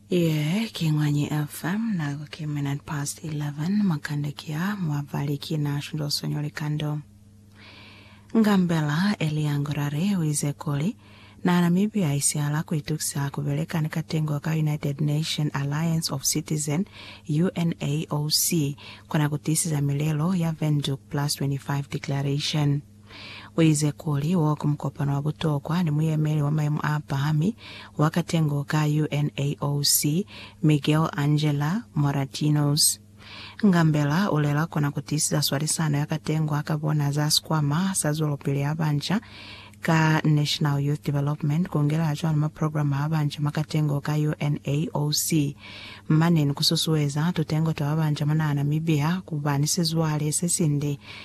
Yeah, ki Ngwanyi FM, nako ki minute past 11, makande ki a, mwabali ki na shinto sonyo likando. Ngambela Elia Ngorare uize kuli, na Namibia isihala kuitukisa kubeleka ni katengo ka United Nation Alliance of Citizen, UNAOC, kona kutisiza milelo ya Windhoek Plus 25 Declaration. Uize kuli, Wo ki mukopano wa butokwa ni muyemeli wa mayemo a pahami wa katengo ka UNAOC, Miguel Angel Moratinos. Ngambela ulela kona kutiisiza swalisano ya katengo aka bona za sikwama sa zwelopili ya banca ka National Youth Development kungelela cwalo ma programa a banca mwa katengo ka UNAOC, mane ni kususueza tutengo twa babanca mwa naha Namibia kuba ni sizwale sesinde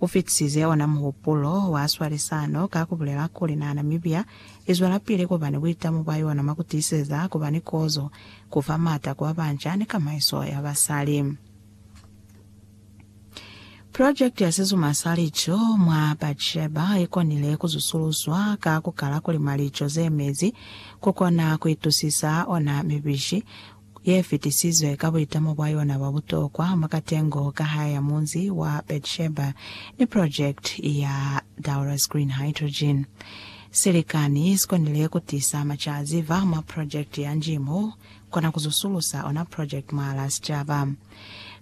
U fitisize ona muhupulo wa swalisano ka ku bulela kuli naha Namibia i zwelapili ku ba ni buitamo bwa yona mwa ku tiiseza ku ba ni kozo, ku fa maata ku ba banca ni kamaiso ya basali. Project ya sizuma sa lico mwa Batsheba i konile ku zusuluswa ka ku kala ku lima lico ze mezi ku kona ku itusisa ona mibishi, ye fitisizwe ka buitamo bwa yona bwa butokwa mwa katengo ka hae ya munzi wa Beersheba ni projekiti ya Daura's Green Hydrogen. Silikani sikonile kutisa macaziva mwa projekiti ya nji mo kona kuzusulusa ona projekiti mwahalaa sicaba.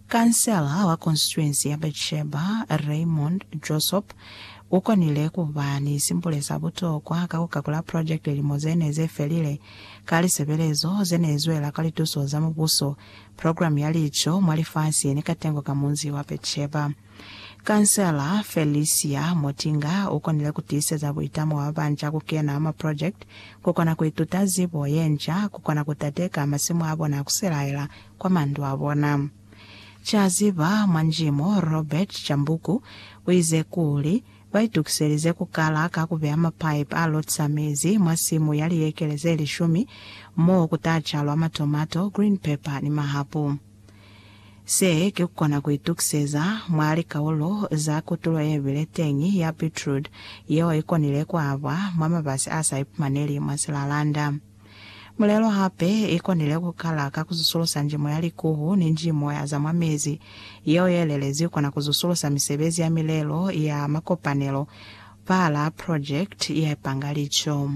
Kansela wa konsituensi ya Beersheba, Raymond Josop, ukonile kuba ni simbule sa butokwa ka kukakula projekiti lilimo zene zefelile Ka lisebelezo ze ne zwela ka lituso za Mubuso, program ya lico mwa lifasi ye ne katengo ka munzi wa Betsheba. Kansela Felicia Motinga u konile ku tiiseza buitamo bwa babanca ku kena mwa project, ku kona ku ituta zibo ye nca, ku kona ku tateka masimu a bona a ku selaela kwa mandu a bona. Caziba mwa njimo Robert Chambuku u ize kuli, Ba itukiselize ku kala ka ku beya mapaipi a lotisa mezi mwa simu ya liekele ze lishumi mo ku ta calwa matomato, green pepper ni mahapu. Se ki ku kona ku itukiseza mwa likaulo za kutulo ye bile teñi ya beetroot yeo i konile ku abwa mwa mabasi a sa ipumaneli mwa silalanda. Mulelo hape i konile ku kala ka ku zusulusa njimo ya likuhu ni njimo ya za mwa mezi. Yeo ye lelezi kona ku zusulusa misebezi ya milelo ya makopanelo, pala, project, ya ipanga lico.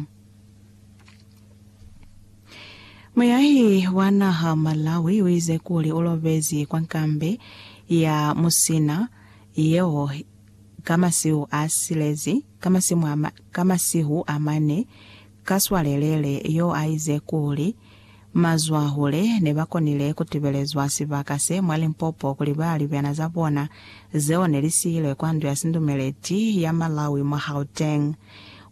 Muyahi wa naha Malawi uize kuli ulobezi kwa nkambe ya Musina yeo ka masihu a silezi, ka masimu a, ka masihu a mane, Kaswalelele yo a ize kuli, Mazwahule ne ba konile ku tibelezwa sibaka se mwa Limpopo kuli ba libyana za bona zeo ne li siilwe kwa ndu ya sindumeleti ya Malawi mwa Gauteng.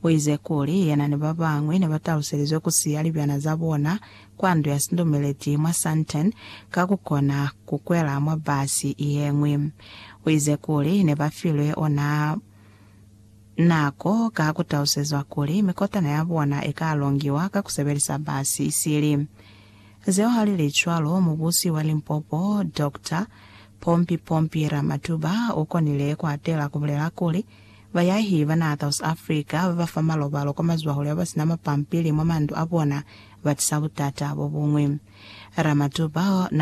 U ize kuli yena ni ba bañwi ne ba taluselizwe ku siya libyana za bona kwa ndu ya sindumeleti mwa Sandton ka ku kona ku kwela mwa basi ye ñwi. U ize kuli ne ba filwe ona Na ko ka ku talusezwa kuli mikotana ya bona i ka longiwa ka ku sebelisa basi isili. Zeo ha li li cwalo, Mubusi wa Limpopo, Dokta Pompi Pompi Ramatuba, u konile ku hatela ku bulela kuli, Bayahi ba naha South Africa ba ba fa malobalo kwa mazwahule ba ba si na mapampili mwa mandu a bona ba tisa butata bo buñwi. Ramatuba na.